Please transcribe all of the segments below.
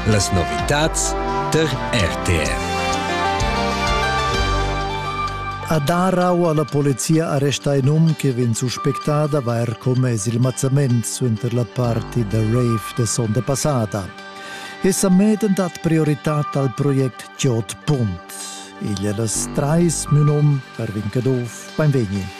Las novitads tar RTR. A Darau ha la polizia arrestà in um che vegn suspectà d'avair commess il mazzament suenter la party da rave da sonda passada. Essa medem dat prioritad al project Giot Pum. Igl è las trais min um per Vincadov. Beinvegni!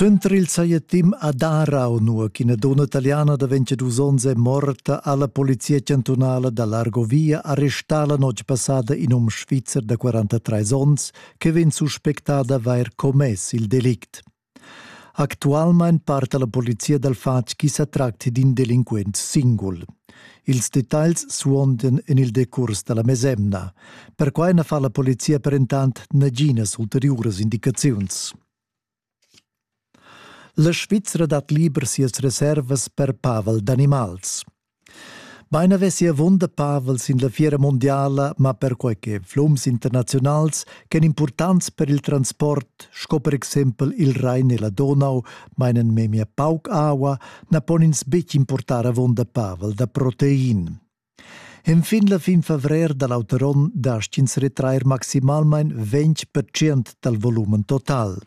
Suenter il saietim ad Arau, nua ch'ina donna italiana da 22 onns è morta, ha la polizia chantunala da l'Argovia arrestà la notg passada in um svizzer da 43 onns che vegn suspectà d'avair commess il delict. Actualmein parta la polizia dal fatg ch'i sa tracti d'in delinquent singul. Ils detagls suondan en il decurs da la mesemna. Perquai na fa la polizia per entant naginas ulteriuras indicaziuns. La Svizra dat liber sias reservas per pavel d'animals. Bein havessi avunda pavel sin la fiera mundiala, ma perquei che flums internaziunals ch'ein impurtants per il transport, sco per exempel il Rhein e la Donau, meinen memia pauc aua, na pon ins betg importar avunda pavel da protein. Enfin la fin favrer da l'auter onn dastg ins retrair maximalmain 20% dal volumen total.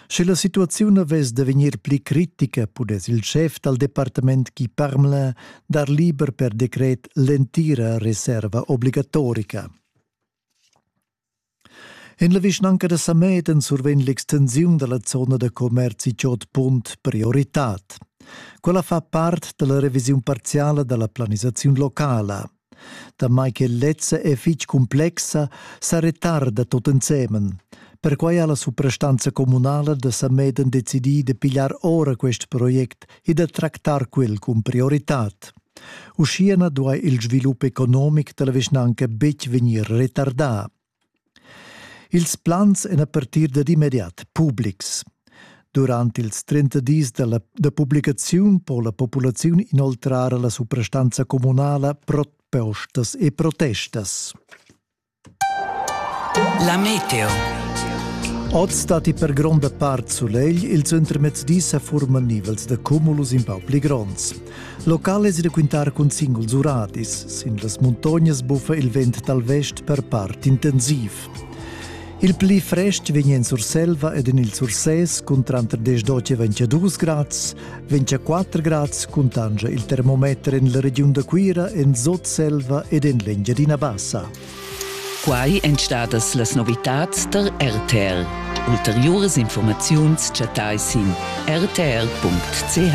Sche la situaziun avess da vegnir pli critica, pudess il schef dal departament Guy Parmelin dar liber per decret l'entira reserva obligatorica. En la vischnanca da Samedan survegn l'extensiun da la zona da commerzi Chod Punt prioritad. Quella fa part da la revisiun parziala da la planisaziun locala. Damai che lezza è fitg cumplexa, sa retarda tut ensemen. Perquai ha la suprastanza communala da Sameden decidì da pigliar ora quest project e da tractar quel cun prioritad. Uschia na duai il svilup economic da la vischnanca betg vegnir retardà. Ils plans èn a partir dad immediat publics. Durant ils 30 dis da, la, da publicaziun po la populaziun inoltrar alla suprastanza communala propostas e protestas. La meteo. Oz datti per gronda part sulegl, il suentermezdi sa furman nivels da cumulus in pau pli gronds. Local es da quintar cun singuls uradis. Sin las muntognas buffa il vent dal vest per part intensiv. Il pli frest vegn en Surselva ed en il Sursès cun tranter 10 e 22 grads, 24 grads cuntanscha il termometer en la regiun da Cuira, en Sotselva ed en l'Engiadina Bassa. Quai èn stadas las novitads tar RTL. Ulteriuras informaziuns chattai sin rtr.ch.